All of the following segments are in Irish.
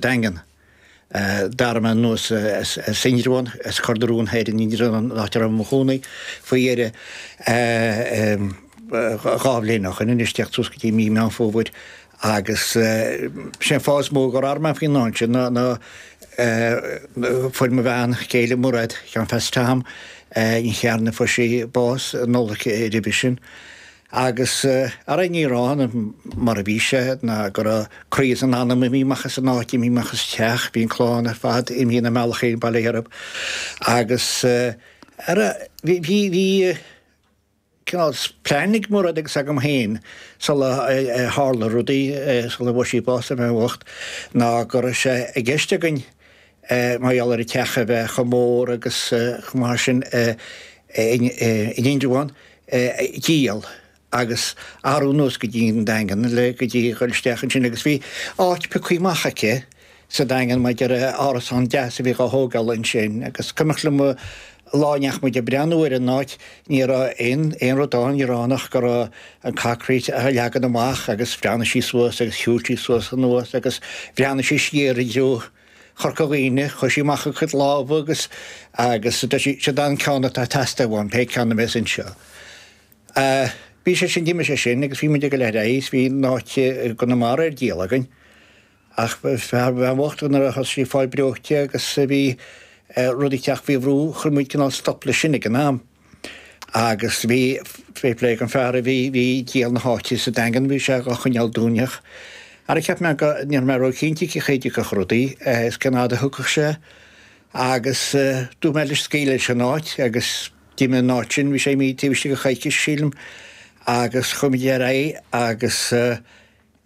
daingean d'athraigh mé anuas as Indreabhán, as Cor na Rón Thoir in Indreabhán an áit a raibh mé i mo chónaí faoi dheireadh dhá bhliain ó shin anois, teacht suas go dtí mí Meán Fómhair, agus sé an fáth is mó gur athraigh mé faoin am sin ná ná fuair mo bhean chéile Mairéad Sheáin Pheats Tom, Ní Chearna, fuair sí bás an Nollaig roimhe sin. Agus ara in Indreabhán, mar a bhí sé, ná go raibh croí is an anam imithe amach as an áit imithe amach as an teach, bhí an clann ar fad imithe ina mbealach féin, bail ó Dhia orthu. Agus ara, bhí, bhí, bhí cineál plean ag Mairéad agus agam féin sula tharla rudaí, sula bhfuair sí bás, an bhean bhocht, ná go raibh sé i gceist againn mar gheall ar an teach a bheith chomh mór agus chomh maith sin in Indreabhán, díol agus athrú anuas go dtí an Daingean le go dtí dhul isteach ansin agus bhí áit pioctha amach aici sa Daingean maidir le árasán deas a bhí dhá thógáil ansin agus cuimhneach liom an lá a ndeachaigh muid ag breathnú ar an áit ní raibh aon aon rud ann, ní raibh ann ach go raibh an concrete á leagan amach agus bhreathnaigh sí suas agus shiúil sí suas anuas agus bhreathnaigh sí siar i dtreo Chorca Dhuibhne. Chuir sí amach a cuid lámha agus agus deir sí, seod é an ceann atá ag teastáil uaim, pé ceann a bheas anseo. Eh, bhí sé sin, d'imigh sé sin agus bhí muid ag dul ar aghaidh 's bhí an áit i gConamara ar díol againn. Ach an bhean bhocht go nuair a thosaigh sí ag fáil breoite agus bhí eh, rudaí ag teacht faoi bhrú, chuir muid cineál stop leis sin ag an am. Agus bhí, fair play dhon fhear a bhí ag díol na háite sa Daingean, bhí sé dhá choinneáil dúinn ach. Ara cheap mé go, ní raibh mé ró chinnte cén chaoi a dtiocfadh rudaí, is cén fhad a thiocfadh sé. Agus dúirt mé leis scaoileadh leis an áit agus d'imigh an áit sin, bhí sé imithe taobh istigh de choicís sílim. Agus chuaigh muid ar aghaidh agus,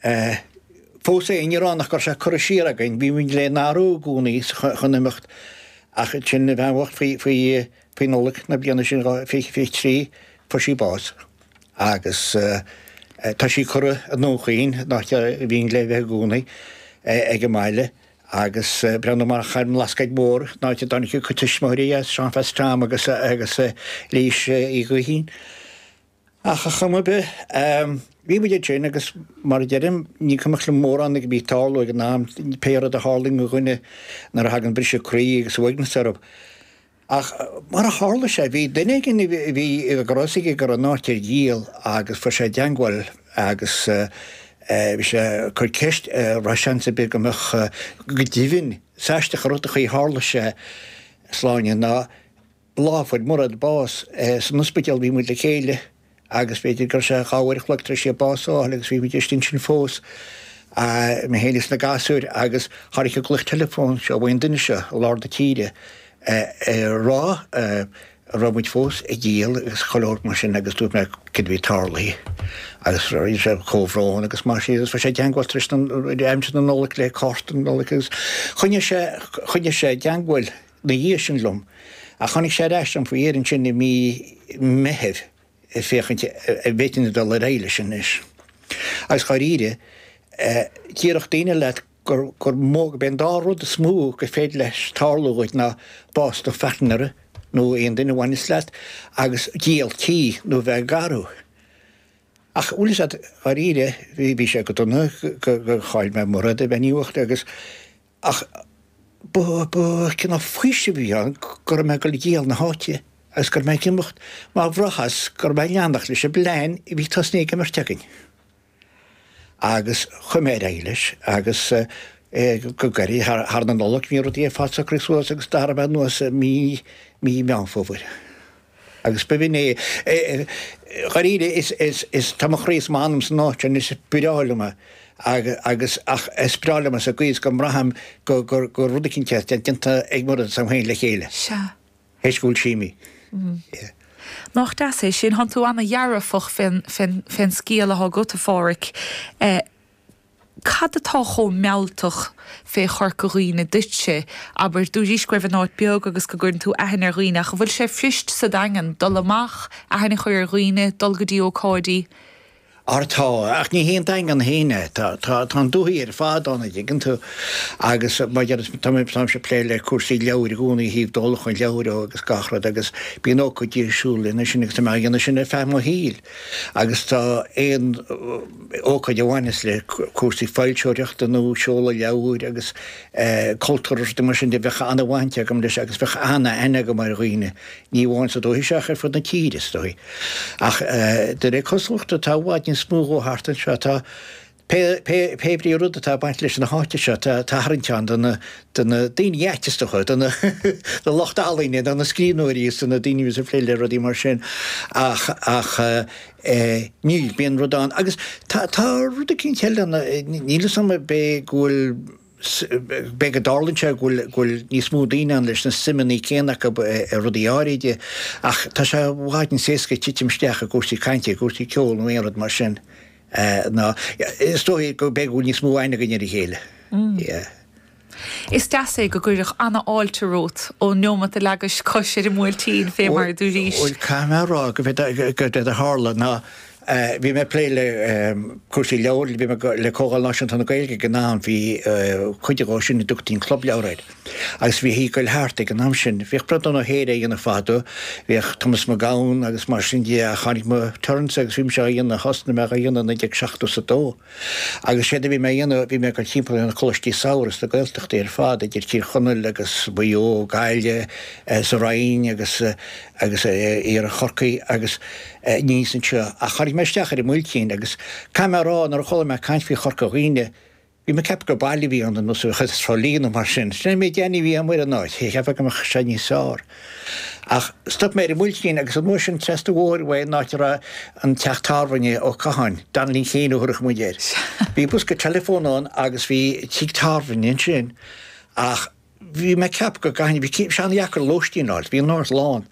Fós féin, in Indreabhán ach go raibh sé curtha siar againn, bhí muid le n-athrú i gcónaí chun imeacht, ach ansin, an bhean bhocht, faoi Nollaig na bliana sin, 2023, fuair sí bás, agus tá sí curtha i nDún Chaoin, an áit ar mhian léi a bheith i gcónaí, ag a baile, agus breathnú amach thar an mBlascaod Mór, an áit a dtáinig a cuid tuismitheoirí as, Seán Pheats Tom agus Lís Ní Chatháin. Ach ar chuma ar bith, bhí muid ansin agus mar a deirim, ní cuimhneach liom mórán a bhí ag tarlú ag an am, pé rud a tharlaíonn do dhuine nuair a thagann briseadh croí agus uaigneas orthu. Ach mar a tharla sé, bhí duine éigin a bhí a fhios aige go raibh an áit ar díol agus fuair sé i dteagmháil agus bhí sé ag cur ceist, raibh seans ar bith go mbeadh, go deimhin, 's aisteach an rud a tharla sé, sláine, ná. fuair Murad bás san ospidéal bhí muid le chéile agus b'fhéidir gurb é dhá uair a chloig tar éis di bás a fháil agus bhí muid ar an tslí ansin fós, mé féin is na gasúir agus tháinig an glaoch teileafóin seo uaidh an duine seo i lár na tíre ag rá go raibh muid fós ag díol agus go leor mar sin agus dúirt mé céard a bhí tarlaithe agus rinne sé comhbhrón agus mar sin agus rinne sé teagmháil tar éis aimsir na Nollag le cárta Nollag agus choinnigh sé i dteagmháil. 'na dhiaidh sin liom, ach tháinig sé ar ais liom faoi dheireadh ansin i mí Meithimh féachaint a' bhféadfainn dul ar aghaidh leis anois. Agus dháiríre, déarfadh daoine leat gur, gur mó, gurb é an dá rud is mó gur féidir leis tarlú dhuit ná bás do phairtnéara nó aon duine a bhaineas leat agus díol tí nó bheith ag athrú. Ach bhuel, is ea, dháiríre, bhí, bhí sé go dona, gur chaill mé Murad i mbaint an dá rud agus, Ach ba chineál faoisimh a bhí ann go raibh mé ag díol na háite agus go raibh mé ag imeacht mar bhraitheas go raibh mé ag leanacht leis an bplean a bhí tosnaithe ag an mbeirt againn. Agus chuaigh mé ar aghaidh leis agus go gairid théis na Nollag bhí rudaí ag fáil socraithe suas agus d'athraigh mé anuas mí Mheán Fómhair. Agus b'in é. Dháiríre, is tá mo chroí is m'anam san áit sin, is breá liom é. Agus, ach is breá liom é sa gcaoi is go mbraithim go, gur, gur rud eicínt é, atá déanta ag Murad is a'm féin le chéile. Sea. Th'éis go bhfuil sí imithe. Yeah. Nach deas é sin? Thá tú ana-dhearfach fén, fén, fén saol athá agat, a Phádhraic. Eh. Cad atá chomh mealltach fé Chorca Dhuibhne duitse? Abair, dúraís, go raibh an áit beag agus go gcuireann tú aithne ar dhaoine, ach an bhfuil sé fuirist sa Daingean dul amach, aithne a chur ar dhaoine, dul go dtí ócáidí? Ó tá, ach ní hé an Daingean féin é. Tá, tá, tá an dúthaigh ar fad ann, a' dtuigeann tú. Agus mar adéarfá, tá mé, táimse a' plé le cúrsaí leabhair i gcónaí, a thaobh díolachán leabhar agus gach rud agus bíonn ócáidí ar siúl lena sin agus tá mé á dhéanamh sin ar feadh mo shaoil. Agus tá aon ócáid a bhaineas le cúrsaí foilseoireachta nó seoladh leabhair agus cultúr is rudaí mar sin de, bheadh an-bhaint agam leis agus bheadh an-aithne agam ar dhaoine, ní amháin sa dúiche seo ach ar fud na tíre, is dóigh. Ach de réir cosúlachta, tá i bhfad níos mó dhó thart anseo. Tá. Pé ar bith rud atá ag baint leis an áit seo, tá tarraingt ann do na daoine artisteacha, do na lucht ealaíne, do na scríbhneoirí is do na daoine a bhíos ag plé le rudaí mar sin. Ach ní, bíonn rud ann. Agus tá rud eicínt eile, níl 'fhios a'm b'fhé' go bhfuil, b'fhé' go dtarlaíonn sé go bhfuil níos mó daoine ann leis na suimeanna céanna acu i rudaí áirithe, ach tá sé i bhfad níos éasca titim isteach i gcúrsaí cainte, i gcúrsaí ceoil nó aon rud mar sin. Eh, no. Is dóigh go mbeidh níos mó aithne againn ar a chéile. Yeah. Is deas é go gcuirfeadh an-fháilte romhat ón neomat a leagais cois ar an mBuailtín, fé mar a dúraís. Bhuel, caithfidh mé a rá go bé séard a tharla ná bhí mé ag plé le cúrsaí leabhar, bhí mé le Comhdháil Náisiúnta na Gaeilge ag an am, bhí cuid dhe sin a dtugtaí an Club Leabhar air. Agus bhí sé ag gabháil thart ag an am sin. Bhíodh brod ann ó shaoire a dhéanamh fadó. Bhíodh Thomas Mac Gabhann agus mar sin de ach tháinig mo turn-sa agus bhí mise á dhéanamh, thosnaigh mé á dhéanamh i naoi déag seachtó is a dó agus séard a bhí mé a dhéanamh, bhí mé ag dul timpeall ar na coláistí samhraidh sna Gaeltachtaí ar fad, idir Tír Chonaill agus Maigh Eo, Gaillimh, sa Rinn agus agus iarthar Chorcaí agus aníos anseo. Ach tháinig mé isteach ar an mBuailtín agus caithfidh mé a rá, nuair a chuala mé caint faoi Chorca Dhuibhne, Bhí mé ag ceapadh gur baile a bhí ann, ar nós Trá Lí nó mar sin. Sin é an méid eolais a bhí agam ar an áit, ag ceapadh go mbeadh sé níos fearr. Ach stop mé ar an mBuailtín agus an uair sin trasna an bhóthair ón áit a raibh an teach tábhairne, Ó Catháin, Danlaí Kane a thabharfadh muid air. Bhí bosca teileafón ann agus bhí tigh tábhairne ansin ach. bhí mé ag ceapadh go gcaithfinn, bhí sé an-deacair lóistín a fháil, bhí an áras lán,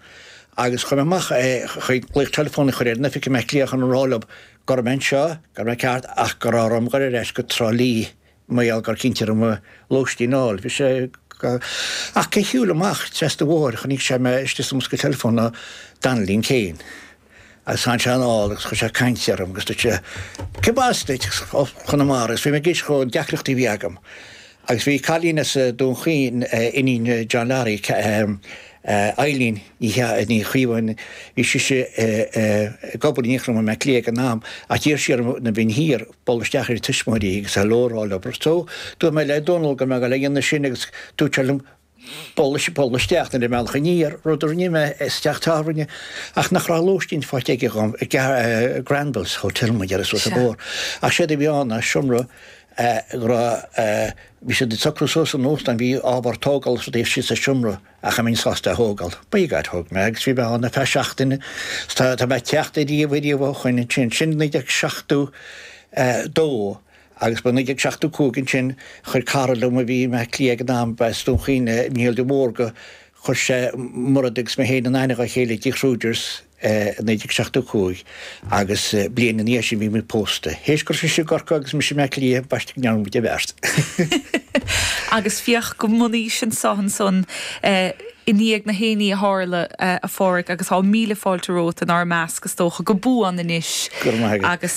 agus chuaigh mé amach chun glaoch teileafóin a chur ar an oifig i mBleá Cliath chun a rá leo go raibh mé anseo, go raibh mé ceart, ach go raibh orm a ghoil ar ais go Trá Lí mar gheall gur chinn sé orm lóistín a fháil. Bhí sé go. Ach cé shiúil amach trasna an bhóthair, chonaic sé mé istigh sa mbosca teileafóin ná Danlaí Kane. Agus tháinig sé anall agus chuir sé caint orm agus dúirt sé Cé mb'as duit? Ó Chonamara agus bhí mé ag insint dhó na deacrachtaí a bhí agam agus bhí cailín as Dún Chaoin, iníon John Larry, Eileen Ní Chaodháin, bhí sise ag obair in Gael Linn i mBaile Átha Cliath ag an am ach d'iarr sí orm nuair a bheinn thiar bualadh isteach ar a tuismitheoirí agus hello a rá leo so dúirt mé le Dónall go raibh mé ag déanamh sin agus dúirt sé liom Bualadh isteach ar an mbealach aniar, rud a rinne mé, sa teach tábhairne, ach nach raibh lóistín faighte aige dhom, Granville's Hotel má ba é do thoil é, ach séard a bhí ann ná seomra go raibh, bhí siad ag socrú suas an óstán, bhí ábhar tógála is rudaí istigh sa seomra ach an mbeinn sásta a thógáil. By God thóg mé agus bhí mé ann ar feadh seachtaine is tá mé ag teacht ariamh, ariamh ó shoin ansin. Sin naoi déag seachtó a dó. Agus ba i 1975 ansin, chuir cara liom a bhí i mBleá Cliath ag an am, as Dún Chaoin, Niall de Mórdha, chuir sé Mairéad agus mé féin in aithne dá chéile i dTigh Kruger's i 1975 agus bliain ina dhiaidh sin bhí muid pósta. Théis go raibh sise i gCorcaigh agus mise i mBleá Cliath, b'aisteach go ndearna muid an bheart. Agus féach go buan anois anseo ansan i ndiaidh na heachtraí a tharla, a Phádraig, agus tá míle fáilte romhat inár measc, is dócha, go buan anois. Go raibh maith agat. Agus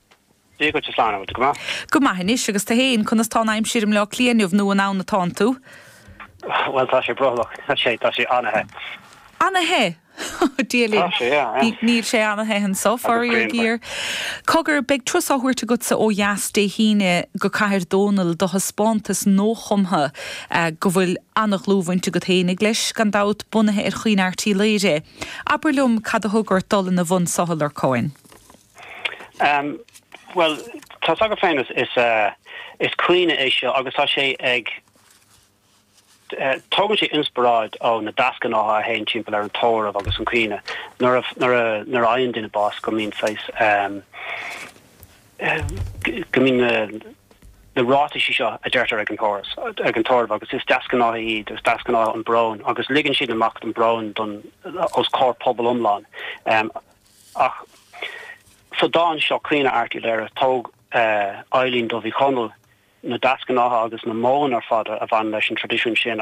Dia dhuit a Shláine, bhfuil tú go maith? Go maith anois, agus tu fhéin? Conas tá an aimsir i mBleá Cliath inniu, nó an ann atánn tú? Bhuel, tá sé brothallach, tá sé, tá sé ana-the. Ana-the? Ó Dia linn. Tá sé, yeah, yeah. Níl sé ana-the anso, faraor géar. Cogar, beidh turas á thabhairt agatsa ó dheas Dé hAoine go Cathair Dónaill do thaispeántas nuachumtha go bhfuil ana-dhlúthbhaint agat fhéinig leis, gan dabht, bunaithe ar Chaoineadh Airt Uí Laoire. Abair liom cad a thug ort dul ina bhun so, ar aon chuma? Bhuel, tá's agat féin, is caoineadh é seo agus tá sé ag. tógann sé inspioráid ó na deasghnátha a théann timpeall ar an tórramh agus an caoineadh. Nuair a fhaigheann duine bás go mbíonn saghas. go mbíonn na na ráitisí seo a deirtear ag an tórramh ag an tórramh agus is deasghnátha iad, is deasghnátha an brón agus ligeann siad amach an brón don. os comhair pobal iomlán. Ach sa dán seo, Caoineadh Airt Uí Laoire, thóg Eibhlín Dubh Ní Chonaill na deasghnátha agus na modhanna ar fad a bhaineann leis an traidisiún sin,